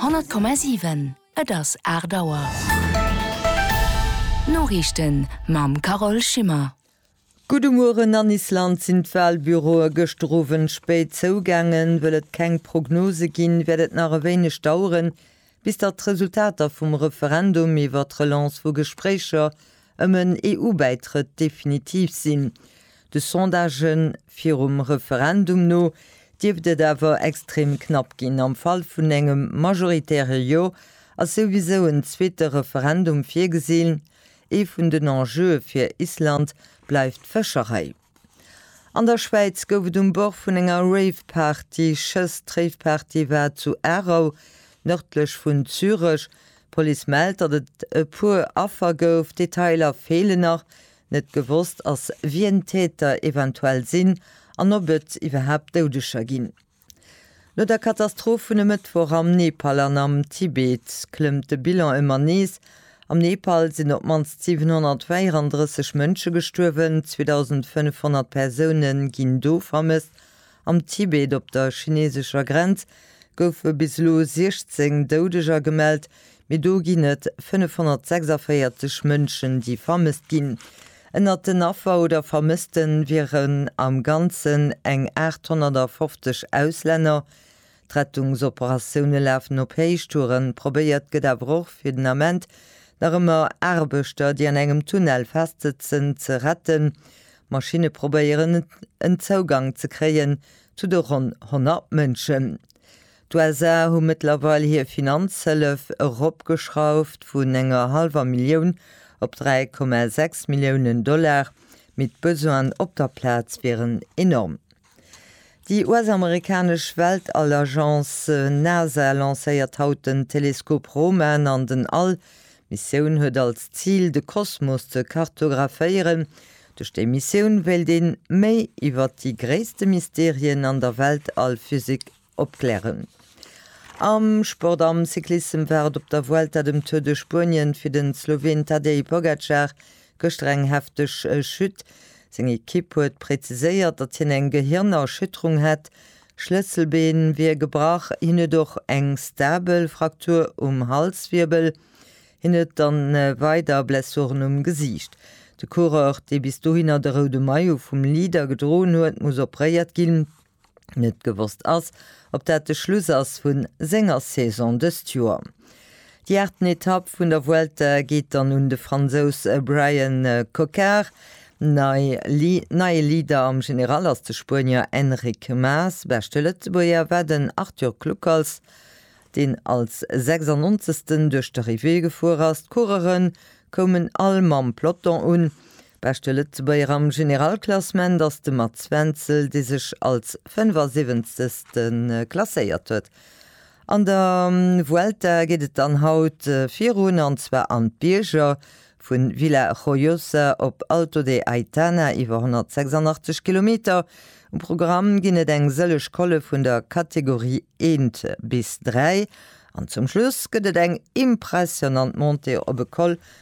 Honnert Komma siwen, et ass aacht Auer. D'Noriichten mam Carole Schimmer. Gudde Mueren, An Island sinn d'Walbüroe gëschter Owend spéit zougaangen. Wëll et keng Prognose ginn, wäert et nach e wéineg daueren, Bis datt d'Resultater vum Referendum iwwer d'Relance vu Gespréicher ëm en EU-Bäitrëtt definitiv sinn. De Sondagë virum Referendum no dierft et awer extrem knapp ginn. Am Fall vun engem majoritäre Jo ass souwisou en zweete Referendum virgesinn. Ee vun den Enjeue fir Island bleift d'Fëscherei. An der Schwäiz gouf et um Bord vun enger Rave-Party Schëss. D'Rave-Party war zu Aarau, nërdlech vun Zürech. D'Police mellt, datt et e puer Affer gouf. Detailer feelen nach. Net gewosst ass, wien d'Täter eventuell sinn an ob et iwwerhaapt Doudeger ginn. No der Katastroph vun e Mëttwoch am Nepal an am Tibet klëmmt de Bilan ëmmer nees. Am Nepal sinn op d'mannst 734 Mënsche gestuerwen, 2.500 Persoune ginn do vermësst. Am Tibet op der chineesescher Grenz goufe bis elo 16 Doudeger gemellt, Mee do ginn et 546 Mënschen, déi vermësst ginn. Ënnert den Affer oder Vermësste wieren am Ganzen eng 850 Auslänner. D'Rettungsoperatioune lafen op Héichtouren. Probéiert gëtt awer och fir den Ament nach ëmmer Aarbechter, déi an engem Tunnel festsëtzen, ze retten. Maschinne probéieren en Zougang ze kréien zu de ronn 100 Mënschen. D'USA hu mëttlerweil hir Finanzhëllef eropgeschrauft vun enger hallwer Millioun op 3,6 Milliounen Dollar, mee d'Besoinen op der Plaz wieren enorm. Déi US-amerikanesch Weltall-Agence NASA lancéiert haut den Teleskop Roman an den All. D'Missioun huet als Zil, de Kosmos ze kartographéieren. Duerch déi Missioun wéilt ee méi iwwer déi gréisste Mysterien an der Weltall-Physik Opklären. Am Sport, am Cyclissem war et op der Vuelta dem Tour de Spuenien fir den Sloween Tadej Pogacar gëschter eng hefteg Chute. Seng Ekipp huet präziséiert, datt hien eng Gehirnerschütterung hätt, Schlësselbeen wier gebrach, hien huet och eng stabel Fraktur um Halswirbel. Hien huet dann weider Blessuren um Gesiicht. De Coureur, dee bis dohinner de roude Maillot vum Leader gedroen huet, muss opréiert ginn. Net gewosst ass, ob dat de Schluss ass vu senger Saison dëst Joer. Déi aachten Etapp vun der Vuelta geet dann un de Fransous Bryan Coquard. Neie Leader am General ass de Spuenier Enric Mas. Beschte Lëtzebuerger war den Arthur Kluckers, deen als 96. duerch d'Arrivée gefuer ass. D'Coureuren koumen all mam Peloton un, Beschte Lëtzebuerger am Generalklassement ass de Mats Wenzel, dee sech als 75. klasséiert huet. An der Vuelta geet et dann haut virun, an zwar an d'Bierger, vu Vila Joiosa op Alto de Aitana, iwwer 186 Kilometer. Um Programm ginn et eng sëlleg Colle vun der Kategorie eent bis dräi, an zum Schluss gëtt et eng impressionnant Montée op e Col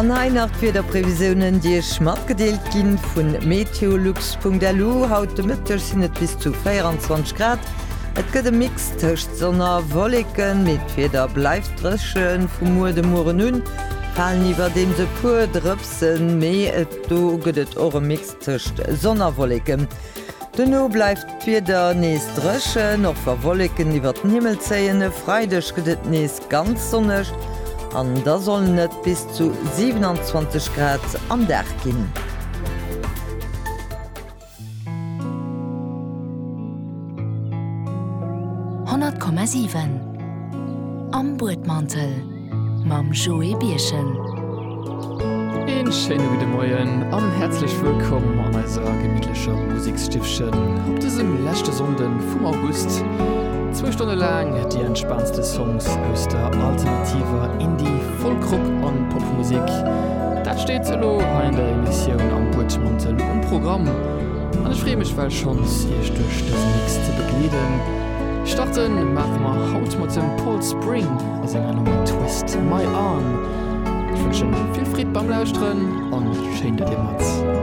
An hei nach d'Wiederprevisiounen, déi Iech matgedeelt gi vu meteolux.lu, Haut de Mëtteg sinn et bis zu 24 Grad. Et gëtt e Mix tëscht Sonn a Wolleken, mee d'Wieder bleift dréchen. Vu muer de Mueren u falen iwwerdeems e puer Drëpsen, mee do gëtt et och e Mix. Tëscht Sonn a Wolleken. Duerno bleift d'Wieder nees dréchen, och wa Wolleken iwwer den Himmel zéien. E Freideg gëtt et nees ganz sonneg an da sollen et bis zu 27 Grad am Dag ginn. Honnert Komma siwen am Buedmantel. mam Joé Birchen. Een schéine gudde Moien an häerzlech wëllkomm an eiser gemittlecher Musikstiffchen op dësem leschte Sonnden vum August. Zwou Stonne laang déi entspaantste Songs aus der alternativer Indie-, Folk-, Rock an Popmusik, dat steet elo hei an der Emissioun Am Buedmantel um Programm an ech freeë mech well schonns iech duerch dëse Mix ze begleeden. Starten maache mer haut mat dem Paul Spring. A senger Nummer Twist My Arm. Ech wënschen vill Freed beim Lauschteren an schéin dat dir mat dob.